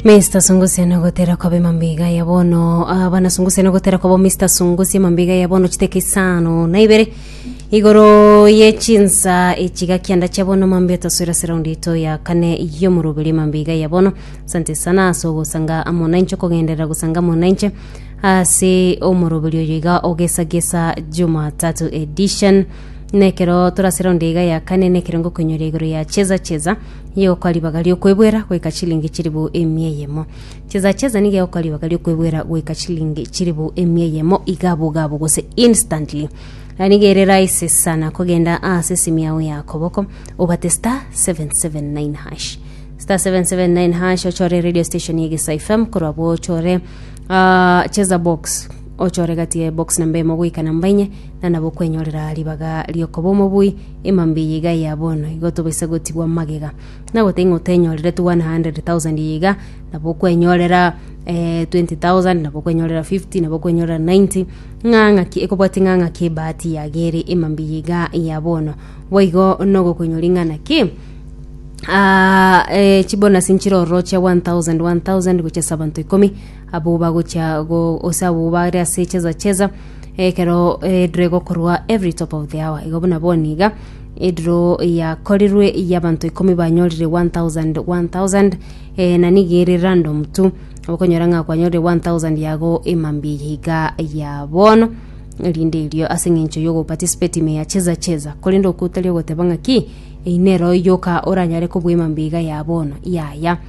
Mr. Sungusia no gotera kwa bema mbiga ya bono ah, bana Sungusia no gotera kwa bo Mr. Sungusia mambiga ya bono chiteke isano na ibere igoro ye chinsa echiga kianda cha bono mambi otaswera surround ito ya kane yo murubiri mambiga ya bono sante sana so gosanga amonanche kogenderera gosanga amonanche ase omurubiri oyo iga ogesagesa Jumatatu edition nekero turasira onde iga ya kane nekero ngokonyoria igoro ya cheza cheza Nigegokoa ribaga ri'okwebwera goika chilingi chilifu emia eyemo. Chesa chesa nigegokoa ribaga ri'okwebwera goika chilingi chilifu emia eyemo iga bogabo gose instantly. Na nigo ere raisi sana kogenda ase esimi yao ya koboko obate star 779 hash star 779 hash ochore radio station ya Gesa FM korwa bo ochore ah, chesa box ochore gati ya box namba emo goika namba enye na nabo okwenyorera ribaga riokoba omobui Emambia eye iga ya bono, igo tobaisa gotigwa magega, na goteng'o tenyorire 100,000 eye iga, nabo okwenyorera eh, 20,000 nabo okwenyorera 50 nabo okwenyorera 90 ng'a ng'aki ekobwati ng'a ng'aki ebahati yagere emambia eye iga ya bono boigo nogokoinyori ng'a naki Ah, eh, chibonus nchire ororochia 1000 1000 gochia ase abanto ikomi abwo bagochia go ase abwo bare ase cheza cheza ekero erire gokorwa every top of the hour igo buna boni iga ediro yakorirwe y'abanto ikomi banyorire 1000 1000 eh, na nigo ere random tu okonyora ng'a kwanyorire 1000 yago emambia eye iga ya bono erinde erio ase eng'encho yogoparticipate ime ya cheza cheza korende okotari ogoteba ng'a ki einero yoka oranyare kobua emambia iga ya bono yaya